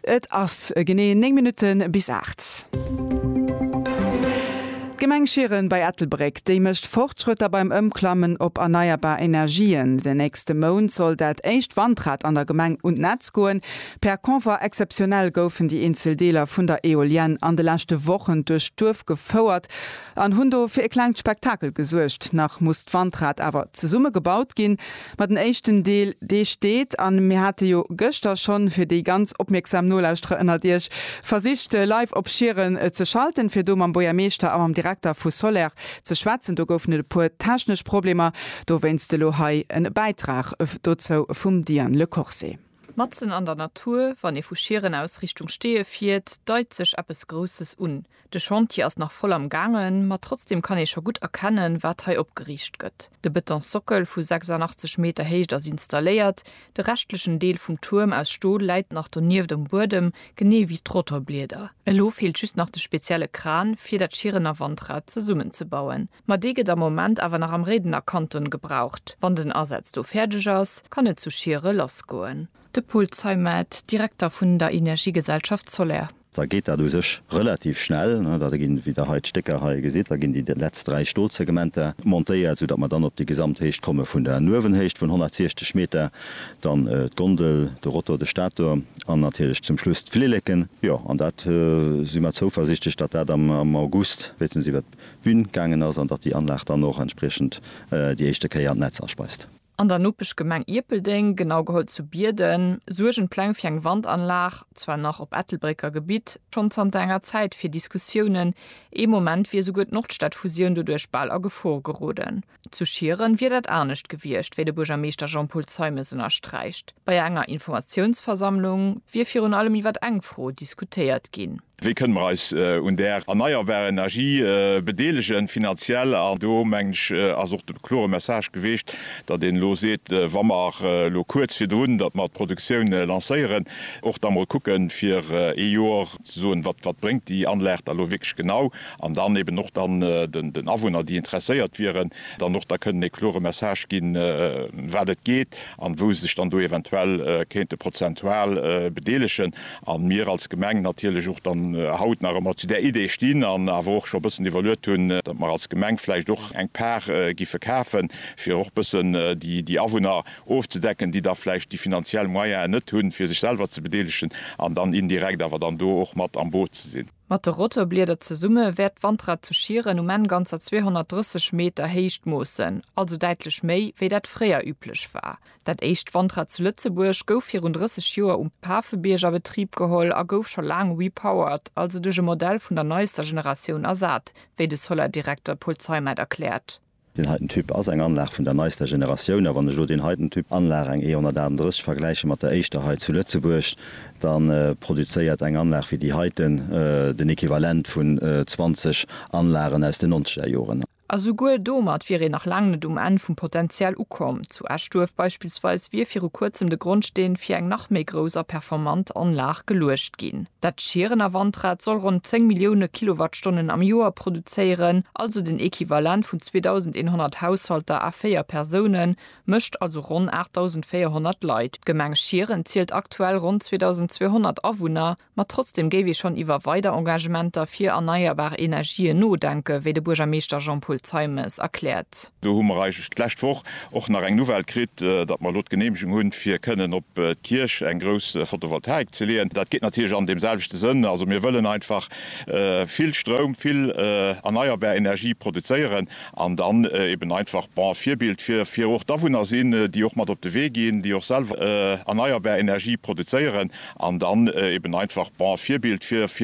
Et ass genee 9 Minutten bis 8. D'Gemeng Schieren bei Ettelbréck, déi mécht Fortschrëtter beim Ëmklammen op erneierbar Energien. Den nächste Mount soll dat éischt Wandrad an der Gemeng un d'Netz goen. Per Convoi exceptionnel goufen déi eenzel Deeler vun der Eolienne an de leschte Wochen duerch d'Duerf gefouert. An hunn do fir e klengt Spektakel gesuergt. Nach muss d'Wandrad awer zesumme gebaut ginn. Ma den éischten Deel, dee steet. An mir hate jo gëschter schonn, fir déi ganz opmierksam Nolauschterer ënnert Iech, versicht de Live op Schieren ze schalten, fir do mam Bourgermeeschter a mam Direkter vu Soler ze schwätzen. Do goufen et e puer technesch Problemer. Dowéinst elo hei e Bäitrag dozou vum Diane Le Corse. Matzen an der Natur, wann ee vu Schieren aus Richtung Steeë fiert, deit sech eppes Grousses un. De Chantier ass nach voll am gaangen, ma trotzdem kann ee scho gutt erkennen, wat hei opgeriicht gëtt. De Betonsockel vu 86 Meter Héicht ass installéiert, de reschtlechen Deel vum Tuerm aus Stol läit nach donieft um Buedem, genee wéi d'Rotorblieder. Elo feelt just nach de spezielle Kran, fir dat Schierener Wandrad zesummenzebauen. Ma dee gëtt am Moment awer nach am Réidener Kanton gebraucht. Wann den Asaz do fäerdeg ass, kann et zu Schiere lassgoen. De Paul Zeimet, Direkter vun der Energiegesellschaft Soler. da geet dat u sech relativ schnell, da ginn, wéi Der hei d'Stécker hei gesitt, da ginn déi letzt dräi Stolsegmenter montéiert, soudatt mer dann op déi Gesamthéicht komme vun der Nuewenhéicht vun 160 Meter, dann d'Gondel, de Rotor, de Stator an natierlech zum Schluss d'Flilleken. Jo, an dat si mer zouversiichtlech, datt dat am August wéinstens iwwert d'Bün gaangen ass an datt déi Anlag dann och entspriechend déi éischte Kéier an d'Netz aspeist. An der Nopeschgemeng Ierpeldeng, genau geholl zu Bierden, suergen d'Pläng fir eng Wandanlag, zwar nach op Ettelbrécker Gebitt, schonn zanter enger Zäit fir Diskussiounen. Ee Moment wier esouguer d'Nordstadfusioun doduerch bal a Gefor geroden. Zu Schieren wier dat anescht gewiescht, wéi de Buergermeeschter Jean-Paul Zeimes ënnersträicht. Bei enger Informatiounsversammlung wier virun allem iwwer eng Fro diskutéiert ginn. Wéi kënne mer eis un där erneierbarer Energie bedeelegen, finanziell? An do, mengen ech, ass och de klore Message geweecht, datt een elo seet, wa mer elo kuerz virdrun, datt mer d'Produktioun lancéieren, och da mol kucken, fir ee Jor ze soen, Wat bréngt déi Anlag da elo wierklech genau? An dann eben och dann den Awunner, déi interesséiert wieren, dann och da kënnen ee klore Message ginn, ëm wat et geet an wou se sech dann do eventuell kéinte prozentual bedeelegen. A mir als Gemeng natierlech och dann haut nach ëmmer zu där Idee stinn an awer och scho bëssen iwwerluet hunn, datt mer als Gemeng vläicht och eng Par giffe kafen, fir och bëssen déi Awunner ofzedecken, déi da vläicht déi finanziell Moyene net hunn, fir sech selwer ze bedeelegen an dann indirekt awer dann do och mat am Boot ze sinn. Mat de Rotorblieder zesumme wäert d'Wandrad zu Schieren um Enn ganzer 230 Meter Héicht moossen, also däitlech méi, wéi dat fréier üblech war. Dat éischt Wandrad zu Lëtzebuerg gouf virun 30 Joer um Pafebiërg a Betrib geholl a gouf scho laang repowered, also duerch e Modell vun der neister Generatioun ersat, wéi de Solar-Direkter Paul Zeimet erkläert. Deen heiten Typ ass eng Anlag vun der neister Generatioun, a wann ech elo deen heiten Typ Anlag, eng E138, vergläiche mat der éischter hei zu Lëtzebuerg, da produzéiert eng Anlag wéi déi heiten den Equivalent vun 20 Anlagen aus den nonzeger Joren. A souguer domat wier een nach laang net um Enn vum Potenzial ukomm. Zu Eschduerf beispillsweis wier viru kuerzem de Grondsteen fir eng nach méi grouss a performant Anlag geluecht ginn. Dat Schierener Wandrad soll ronn 10 Millioune Kilowattstonnen am Joer produzéieren, also den Equivalent vun 2.100 Haushalter a véier Persounen, mécht also ronn 8.400 Leit. D'Gemeng Schieren zielt aktuell ronn 2.200 Awunner, ma trotzdeem géif ee schonn iwwer weider Engagementer fir erneierbar Energien nodenken, wéi de Buergermeeschter Jean-Paul Zeimes erkläert. Do hu mer eigentlech d'lescht Woch och nach eng Nouvelle kritt, datt mer elo d'Geneemegung hunn, fir kënnen op d'Kierch eng grouss Photovoltaik ze leeën. Dat geet natierlech an deem selwechte Sënn. Also mir wëllen einfach vill Stroum, vill erneierbar Energie produzéieren an dann eben einfach, bon, Virbild fir fir och d'Awunner sinn, déi och mat op de Wee ginn, déi och selwer erneierbar Energie produzéieren an dann eben einfach, bon, Virbild fir fir.